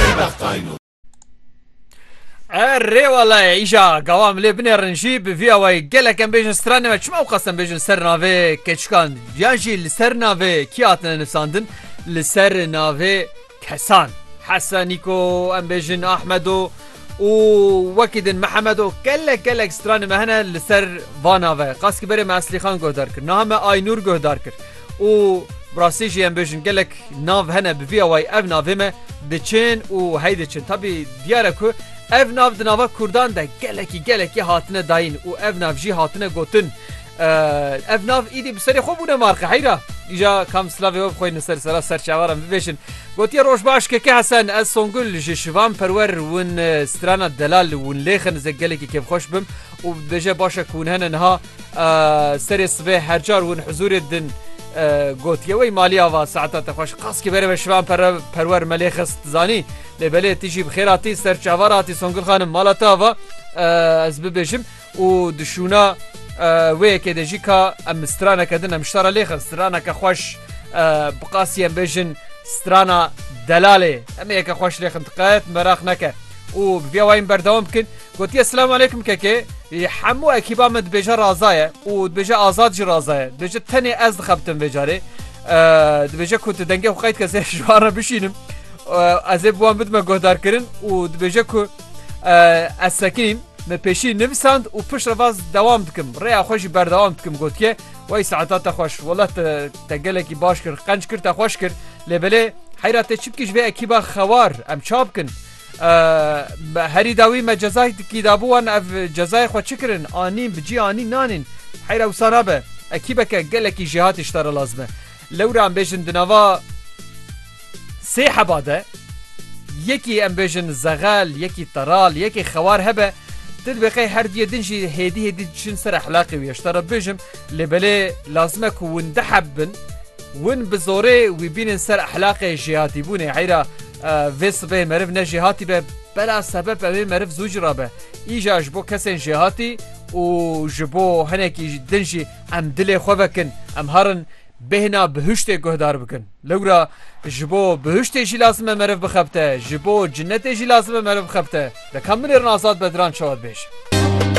tê bextayno. Erê walaye îja gawa milê binêrin jî bi vî awayî gelek em bêjin stranê me çima wexas em bêjin ser navê keçikan yan jî li ser navê kî hatine nivsandin li ser navê kesan Hesenîko em bêjin Ahmedo û wekî din Mihemedo gelek gelek stranê me hene li ser va nave qas ki berê me Eslîxan guhdar kir niha me Aynûr guhdar kir. û bi rastî jî em bêjin gelek nav hene bi vî awayî ev navê me diçin û hey diçin. Tabî diyar e ku ev nav di nava Kurdan de gelekî gelekî hatine dayîn û ev nav jî hatine gotin ev nav îdî bi serê xwe bûne marqe heyra îja kam silavê we bixweyne ser sera ser çawaran bibêjin. Gotiye roj baş keke hesen ez Songul ji şivan perwer win strana delal win lêxin ze gelekî kêfxweş bim û bêje başe ku hûn hene niha Serê sibê hercar hûn hizûrê din gotiye wey maliya va saeta te xweş qaskî bere ve şivan pere perwer melê xist zanî lê belê tî jî bixêratî ser çavar hatî Songil xanim mala te va ez bibêjim û dişûna wê yekê de jî ka em straneke din em ştara lê xist straneke xweş biqasî em bêjin strana delalê em yeke xweş lê xintiqet meraq neke û bi vê wayên berdewam bikin Gotiye Selam Aleykum Keke, hemû ekîba me dibêje raza ye û dibêje Azad jî raza ye. Dibêje tenê ez dixebitim vê carê. Dibêje ku tu dengê xwe qeyd kes ji wan re bişînim. Ez ê bi wan bidime guhdarkirin û dibêje ku ez sekinîm. Me pêşî nivisand û piştre vaz dewam dikim. Rêya xwe jî berdewam dikim gotiye. Wey saeta te xweş. Wela te te gelekî baş kir, qenc kir te xweş kir. Lê belê heyra tê çi bikî ji vê ekîba xewar em ça bikin. Herî dawî me cezayê dikî dabû wan ev cezayê xwe çi kirin anîn bi cî anîn nanîn heyra wisa nabe ekîbeke gelekî jêhatî ji te re lazim e. Lewra em bêjin di nava sê heba de yekî em bêjin zexel yekî teral yekî xewar hebe tu dibê qey her duyê din jî hêdî hêdî diçin ser ehlaqê wî ji te re bibêjim lê belê lazim e ku win diheb bin win bi zorê wî bînin ser ehlaqê jêhatîbûnê heyra Vê sibehê meriv ne jêhatî be bela sebep ew ê meriv zû cira be. Îja ji bo kesên jêhatî û ji bo hinekî din jî em dilê xwe vekin, em herin bêhna bihuştê guhdar bikin. Lewra ji bo bihuştê jî lazim e meriv bixebite, ji bo cinetê jî lazim e meriv bixebite. Leka min ê rin Azad Bedran çawa dibêje.